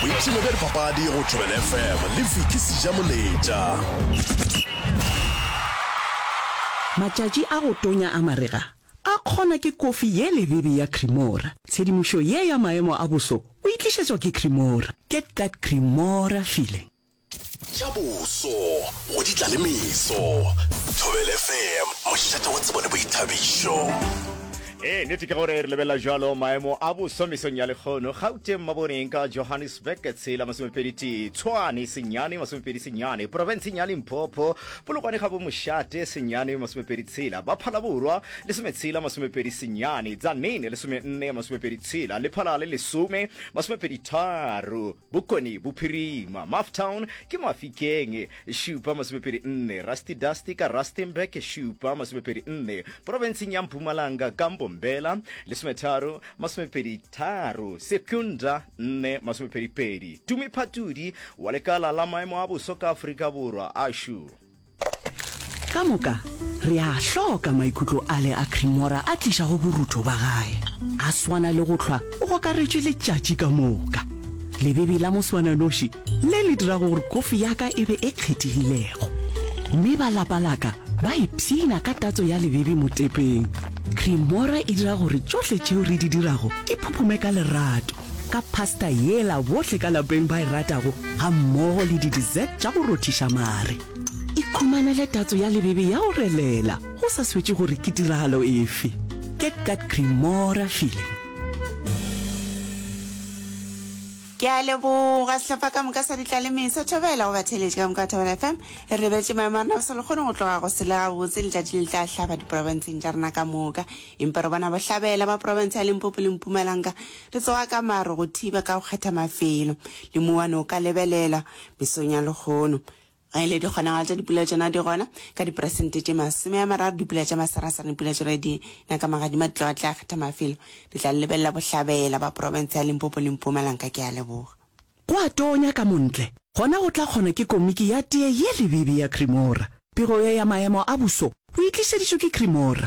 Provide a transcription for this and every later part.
boipshino bja dipapadi go tšwebele fm le viki sejamoletša Matšatši a go tonya a marega a kgonwa ke kofi ye lebebe ya Cremora. Tshedimošo ye ya maemo a boso o e tlišetšwa ke Cremora. Get that Cremora feeling. Tša boso go di tla le meso. Thobela FM, mošate wa tsebo le boithabišo. Ee, nete ke gore re lebelela jalo maemo a boso mesong ya lekgono gauteng maboneng ka johannesburg tshela masomepedi tee tshwane senyane masomepedi senyane porofenseng ya limpopo polokwane ga bomošate senyane masomepedi tshela ba phalaborwa lesometshela masomepedi senyane tsanene lesomenne masomepedi tshela lephalale lesome masomepedi tharo Bokone Bophirima, Mafftown, ke Mafikeng, šupa masomepedi nne, Rusty Dusty ka Rustenburg, šupa masomepedi nne, Profenseng ya Mpumalanga ka Mbombela, lesometharo, masomepedi tharo, Secunda, nne, masomepedi pedi, Tumi Phatudi wa lekala la maemo a boso ka Afrika Borwa, ASHU. Ka moka, re a hloka maikutlo ale a Cremora a tlišago borutho ba gae. A swana le go hlwa o gokaretšwe letšatši ka moka. Lebebi la moswananoši le le dirago gore kofi ya ka e be e kgethegilego. Mme ba lapa la ka ba ipshina ka tatso ya lebebi motepeng. Cremora e dira gore tšohle tšeo re di dirago di phuphume ka lerato. ka pasta yela bohle ka lapeng ba e ratago ga mmogo le di-dessert tša go rothiša mare. Ikhumanele tatso ya lebebe ya go relela go sa swetše gore ke tiragalo efe. Get that Cremora feeling. Ke a leboga sehlopha ka moka sa ditlalemesa thobela go batheletše ka moka thobela fm e rebetše maemo a rena go sa lekgone go tloga go sele gabotse letšatši le tla hlaba diporofenseng tša rena ka moka Empa robana bohlabela ba profense ya Limpopo le Mpumalanga re tsoga ka maru go thiba ka go kgetha mafelo le mouwane o ka lebelelwa mesong ya lehono. Ge e le dikgonagalo tša dipula tšona di gona ka diperesente tše masome a mararo, dipula tša masarasara le pula tše re di na ka magadima di tloga di tla kgetha mafelo. Re tla le lebelela bohlabela ba profense ya Limpopo le Mpumalanga. Ke a leboga. Go a tonya ka mo ntle, gona go tla kgona ke komiki ya tee ye lebibi ya Cremora. Pego ye ya maemo a buso o e tlišeditšwe ke Cremora.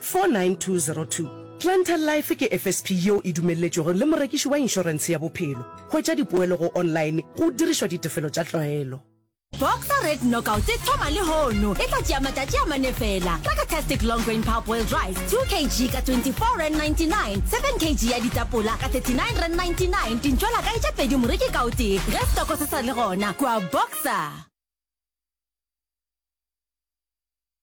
49202 Planter Life ke FSP yeo e dumelletšwego le morekiši wa inšorense ya bophelo. Hwetša dipoelo go online go dirišwa ditefelo tša tlwaelo. Boxer Red Knockout e thoma lehono. E tla tšea matšatši a mane feela. Crackertastic Long Grain Power Boiled Rice, 2 kg ka 24.99 rand, 7 kg ya ditapola ka 39.99 rand, dintšola ka e tše pedi moreki ka o tee. Ge stoko se sa le gona, kua Boxer.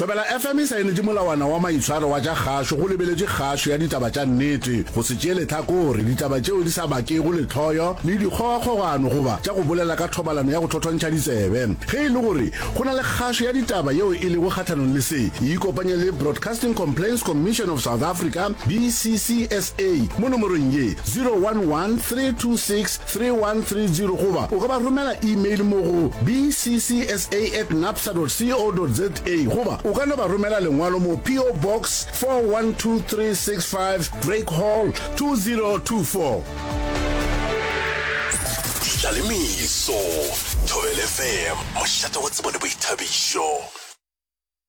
Thobela FM e saenetše molawana wa maitshwaro wa tša kgašo go lebeletše kgašo ya ditaba tša nnete, go se tšeele tlhakore, ditaba tšeo di sa bakego lehloyo le dikgogakgogano goba tša go bolela ka thobalano ya go thothontšha ditsebe. Ge e le gore go na le kgašo ya ditaba yeo e lego kgahlanong le se, e ikopanye le Broadcasting Complaints Commission of South Africa, BCCSA, mo nomorong ye, 011 326 3130 goba o ka ba romela email mo go bcsa at napsa dot co dot za goba o ka no ba romela lengwalo mo PO Box 412365 Drake Hall 2024. Tlalemiso, Thobel FM, mošate wa tsebo le boithabišo.